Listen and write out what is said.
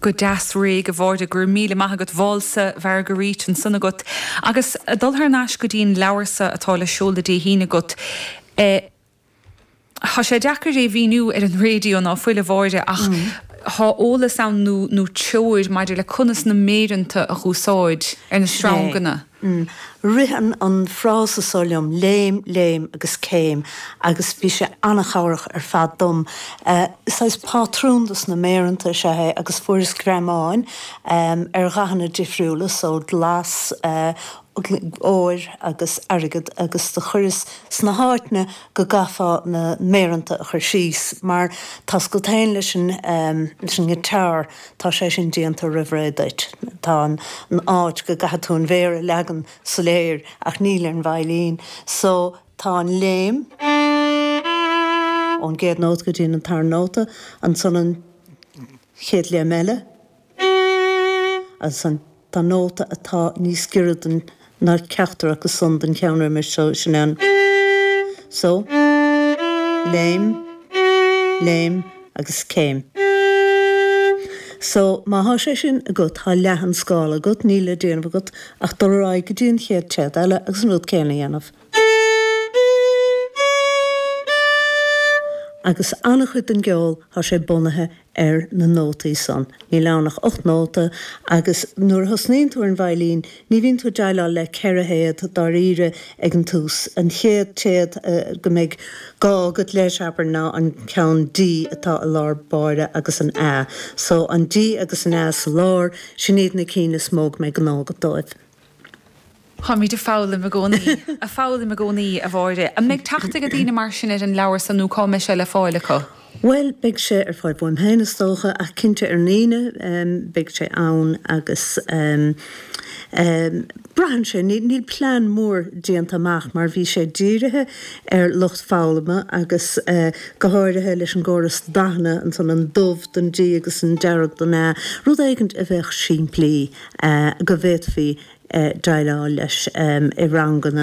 Go deas réidh, a Mháire, go raibh míle maith agat. Válsa Mharguerite ansan agat agus ag dul thar n-ais go dtí an leabhar so atá le seoladh Dé hAoine agat. Tá sé deacair é mhíniú ar an raidio, ná fuil, a Mháire, ach tá eolas ann nó treoir maidir le conas na méaranta a dh'úsáid ar na sreanganna. Ritheann an frása so liom, léim, léim agus céim, agus bhí sé an-chabhrach ar fad dom. Saghas pátrún dos na méaranta is ea é agus fuaireas greamáin ar dhathanna difriúla, so glas, óir agus airgead, agus do chuireas sna háiteanna go gcaithfeá na méaranta a chur síos, mar tá buntáiste leis an ngiotar. tá sé sin déanta roimh ré duit, tá an áit go gcaithfidh tú an mhéar a leagan soiléir ach níl ar an veidhlín so tá an léim, ón gcéad nóta go dtí an tarna nóta, ansan an chéad léim eile, so. Tá nóta atá níos giorra ná ceachtar acu san don cheann roimis ansan. So. Léim, léim agus céim. so má thá sé sin agat, thá leath an scála agat, níl le déanamh agat ach dul ar aghaidh go dtí an chéad téad eile agus an rud céanna a dhéanamh. Agus an-chuid den gceol, thá sé bunaithe ar na nótaí san. Níl ann ach ocht nóta agus nuair a thosnaíonn tú ar an veidhlín ní bhíonn tú ag déileáil le ceithre théad dáiríre ag an tús. An chéad téad go mbeidh gá agat leis, abair, ná an ceann D atá i lár baill agus an A. So, an D agus an A sa lár, sin iad na cinn is mó go mbeidh gnó agat dóibh. Táimid ag foghlaim i gcónaí, ag foghlaim i gcónaí, a Mháire. An mbeidh teacht ag daoine mar sin ar an leabhar san nó cá mbeidh sé le fáil acu? Bhuel, beidh sé ar fáil uaim féin is dócha ach cinnte ar an Aoine beidh sé ann agus braitheann sé, níl plean mór déanta amach mar bhí sé dírithe ar lucht foghlama agus go háirithe leis an gcóras dathanna ansan, an dubh don D agus an dearg don A, rud éigint a bheadh simplí. go bhféadfaí déileáil leis i ranganna